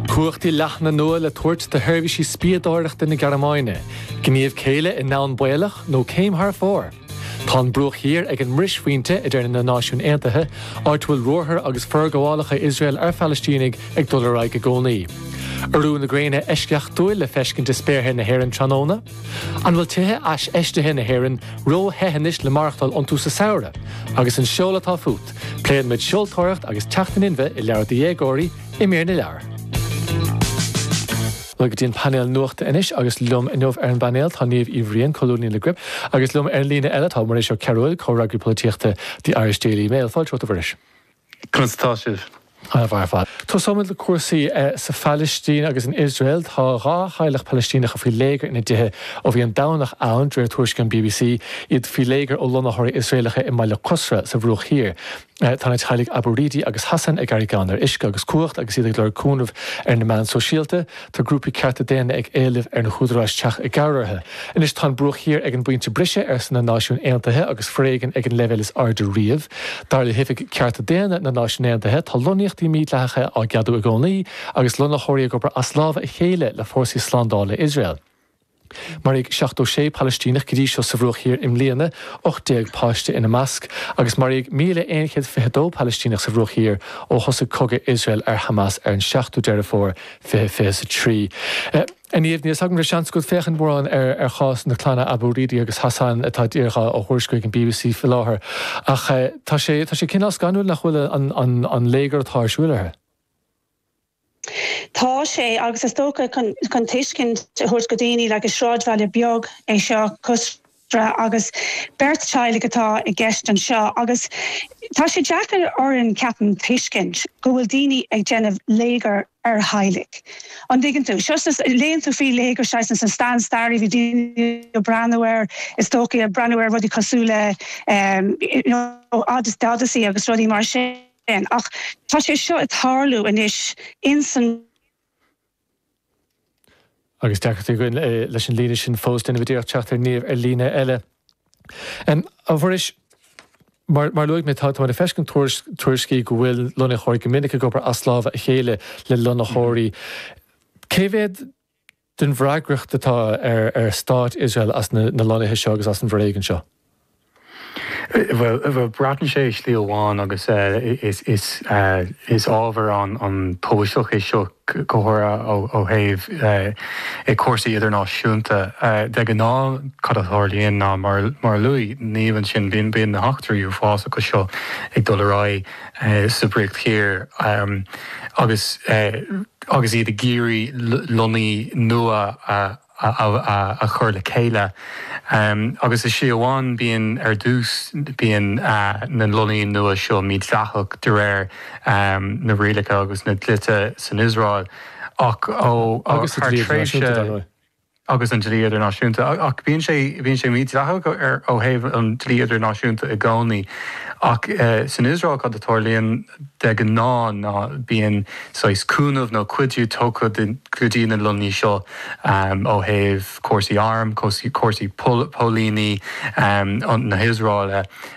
Cumhachtaí leathana nua le tabhairt do sheirbhísí spiadóireachta na Gearmáine. Gníomh céille i ndomhan baolach nó céim thar fóir? Tá an Bruach Thiar ag an mbrisphointe, a deir na Náisiúin Aontaithe, áit a bhfuil ruathair agus forghabhálacha Iosrael ar Phalaistínigh ag dul ar aghaidh i gcónaí. Urú gréine eisceachtúil le feiscint i spéartha na hÉireann tráthnóna? An bhfuil tithe iarfheistithe na hÉireann rothe anois le maireachtáil iontu sa samhradh? Agus an seol atá fút? Pléann muid seoltóireacht agus teacht in inmhe i leabhar do dhéagóirí i mír na leabhar. Linn go dtí an painéal nuachta anois agus liom inniu ar an bpainéal tá Niamh Uí Bhriain, colúnaí le Gript, agus liom ar an líne eile tá Muiris Ó Cearbhaill, comhfhreagraí polaitíochta The Irish Daily Mail. Fáilte romhat a Mhuiris. Conas atá sibh? An-mhaith ar fad. Tosóimid le cúrsaí sa Phalaistín agus in Iosrael. Tá dhá theaghlach Palaistíneacha faoi léigear ina dtithe ó bhí an Domhnach ann, de réir tuairiscí an bbc. Iad faoi léigear ó lonnaitheoirí Iosraelacha i mbaile Qusra sa Bhruach Thiar. Tá na teaghlaigh Abu Ridi agus Hassan ag éirí gann ar uisce agus cumhacht agus iad ag lorg cúnaimh ar na meáin shóisialta. Tá grúpaí cearta daonna ag éileamh ar na húdaráis teacht i gcabhair orthu. Anois tá an Bruach Thiar ag an bpointe briseadh, arsa na Náisiúin Aontaithe, agus foréigean ag an leibhéal is airde riamh. Dar le hOifig Cearta Daonna na Náisiún Aontaithe, tá lonnaíochtaí mídhleathacha á gceadú i gcónaí agus lonnaitheoirí ag obair as lámha a chéile le fórsaí slándála Iosrael. Maraíodh 76 Palaistíneach go dtí seo sa Bhruach Thiar i mbliana, 18 páiste ina measc, agus maraíodh 1,122 Palaistíneach sa Bhruach Thiar ó thosaigh cogadh Iosrael ar Hamas ar an 7ú Deireadh Fómhair 2023. A Niamh, níl 's agam an raibh seans agat féachaint mórán ar chás na gclanna Abu Ridi agus Hassan atá i ndáiríre á thuairisciú ag an bbc faoi láthair, ach tá sé cineál scanrúil nach bhfuil an léigear atá ar siúil orthu. Tá sé, agus is dócha chun tuiscint a thabhairt do dhaoine, like is sráidbhaile beag é seo, Qusra, agus beirt teaghlaigh atá i gceist anseo, agus tá sé deacair orainn, ceapaim, tuiscint go bhfuil daoine ag déanamh léigear ar theaghlaigh. An dtuigeann tú? So, léann tú faoi léigear saghas sa, sa stair, bhí daoine ag breathnú air, is dócha, ag breathnú ar rudaí cosúil le, you know, Odyssey agus rudaí mar sin. sin. Ach tá sé seo ag tarlú anois ins an. Agus deacracht againn leis an líne sin fós, déanfaimid iarracht teacht ar Niamh ar líne eile. A Mhuiris, mar a luaigh mé, táimid ag feiscint tuairiscí go bhfuil lonnaitheoirí go minic ag obair as lámha a chéile le lonnaitheoirí. Cé mhéad den bhfreagracht atá ar Stát Iosrael as na lonnaithe seo agus as an bhforéigean seo? Bhuel, braitheann sé i slí amháin agus is ábhar an-tábhachtach é seo go háirithe ó thaobh cúrsaí idirnáisiúnta de. De gnáth cad a tharlaíonn ná, mar a luaigh Niamh ansin, bíonn, bíonn na heachtraí uafásacha seo ag dul ar aghaidh, sa Bhruach Thiar agus agus iad ag iarraidh lonnaíochtaí nua a chur le chéile. Agus ní hé amháin bíonn ar dtús bíonn na lonnaíochtaí nua seo mídhleathach de réir na rialacha agus na dlíthe san Iosrael ach ó thar tréimhse. agus an dlí idirnáisiúnta. Ach bíonn sé bíonn sé mídhleathach ó thaobh an dlí idirnáisiúnta i gcónaí. Ach san Iosrael cad a tharlaíonn de ghnáth ná bíonn saghas cúnamh nó cuidiú tugtha go dtí na lonnaíochtaí seo ó thaobh cúrsaí arm, cúrsaí póilíní na hIosraele.